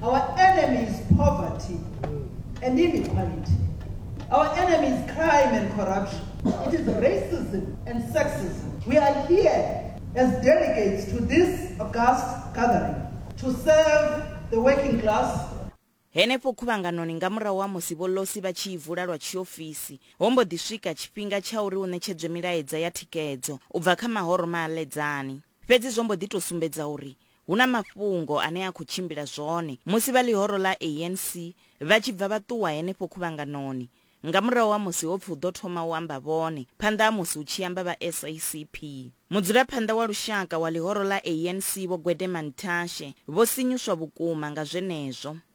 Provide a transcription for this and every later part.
Our enemy is poverty and inequality. Our enemy is crime and corruption. It is racism and sexism. We are here as delegates to this august gathering to serve the working class henefho khuvhanganoni nga murahu ha musi vholosi vha tshi i vula lwa tshiofisi ho mbo ḓi swika tshifhinga tsha uri u ṋetshedzwe milaedza ya thikedzo u bva kha mahoro ma aledzani Fhedzi zwo mbo ḓi tou sumbedza uri hu na mafhungo ane a khou tshimbila zwone musi vha ḽihoro ḽa ANC vha tshi bva vha ṱuwa henefho khuvhanganoni nga murahu ha musi ho pfi hu ḓo thoma u amba vhone phanḓa ha musi hu tshi amba vha SACP. Mudzulaphanḓa wa lushaka wa ḽihoro ḽa ANC Vho Gwede Mantashe vho sinyuswa vhukuma nga zwenezwo.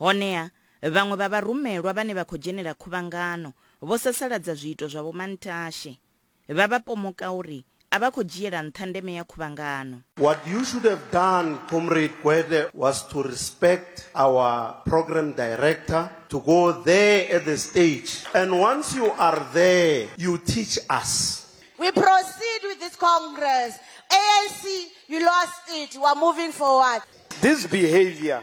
Honeha, vhaṅwe vha vharumelwa vhane vha khou dzhenela khuvhangano vho sasaladza zwiito zwa vhomantashe, vha vha pomoka uri a vha khou dzhiela nṱha ndeme ya khuvhangano. What you should have done Comrade Gwede was to respect our Programme Director to go there at the stage and once you are there you teach us. We proceed with this Congress, ANC you lost it, we are moving forward. This behaviour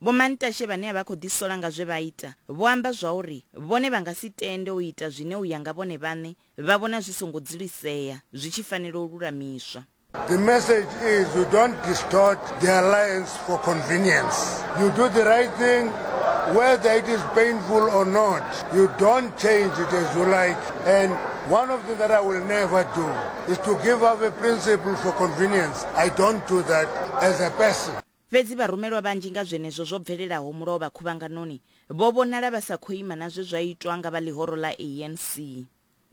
Vhomantashe vhane a vha khou ḓisola nga zwe vha ita vho amba zwauri vhone vha nga si tende u ita zwine u ya nga vhone vhaṋe vha vhona zwi songo dzulisea, zwi tshi fanela u lulamiswa. The message is you don't distort the alliance for convenience. You do the right thing whether it is painful or not. You don't change it as you like and one of the that I will never do is to give up a principle for convenience. I don't do that as a person. Fhedzi vharumelwa vhanzhi nga zwenezwo zwo bvelelaho mulovha khuvhanganoni vho vhonala vha sa khou ima na zwe zwa itwa nga vha ḽihoro ḽa ANC.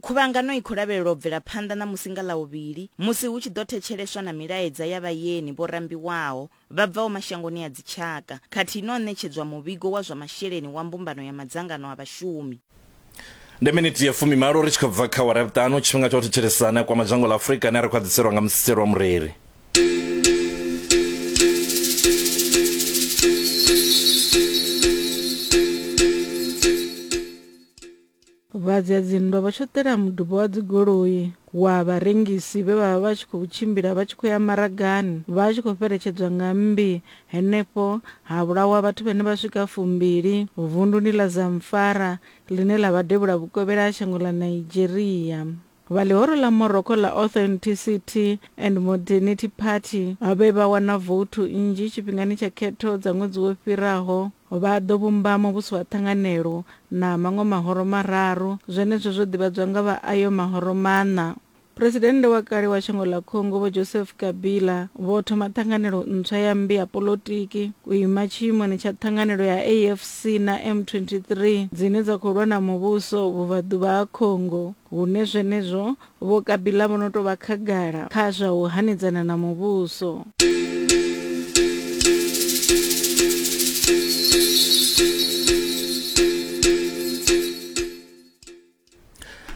Khuvhangano i khou lavhelelwa u bvela phanḓa ṋamusi nga Ḽavhuvhili musi hu tshi ḓo thetsheleswa na milaedza ya vhayeni vho rambiwaho vha bvaho mashangoni a dzitshaka khathihi na u ṋetshedzwa muvhigo wa zwa masheleni wa Mbumbano ya Madzangano a Vhashumi. ndi miniti ya fumimalo ri tshi khou bva kha wara ya vhuṱanu tshifhinga tsha u thetshelesana kwa madzhango ḽa afurika ane a ri khwaḓiselwa nga musiselo wa mureri vhadzadzinndwa vha tshoṱela muduba wa dzigoloi wa vharengisi vhe vha vha vha tshi khou tshimbila vha tshi khou ya maragani vha tshi khou fheletshedzwa nga mmbi Henefho ha vhulawa vhathu vhane vha swika fumbili vunduni ḽa Zamfara ḽine ḽa vha devhula vhukovhela ha shango ḽa Nigeria. Vha ḽihoro ḽa Morocco ḽa Authenticity and Modernity Party vhe vha wana vouthu nnzhi tshifhingani tsha khetho dza ṅwedzi wo fhiraho vha ḓo vhumba muvhuso wa ṱhanganelo na maṅwe mahoro mararu, zwenezwo zwo ḓivhadzwa nga vha ayo mahoro maṋa. Phresidennde wa kale wa shango ḽa Congo Vho Joseph Kabila vho thoma ṱhanganelo ntswa ya mmbi ya polotiki u ima tshiimoni tsha ṱhanganelo ya AFC na M23 dzine dza khou lwa na muvhuso vhubvaḓuvha ha Congo hune zwenezwo Vho Kabila vho no tou vha khagala kha zwa u hanedzana na muvhuso.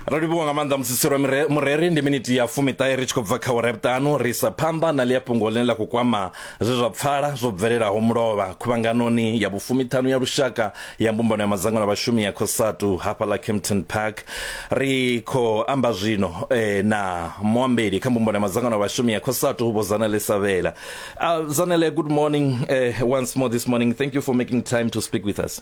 ro livhuwa nga maanḓa musisi lwa mire- mureri ndi miniti ya fumiṱahe ri tshi khou bva kha ura vhuṱanu ri sa phanḓa na ḽia fhungo ḽine ḽa khou kwama zwe zwa pfala zwo bvelelaho mulovha khuvhanganoni ya vhufumiṱhanu ya lushaka ya mbumbano ya madzangano a vhashumi ya khosatu hafha ḽa campton park ri khou amba zwino eh, na muambeli kha mbumbano ya madzangano a vhashumi ya khosatu vho zanele savhela uh, zanele good morning eh, once more this morning thank you for making time to speak with us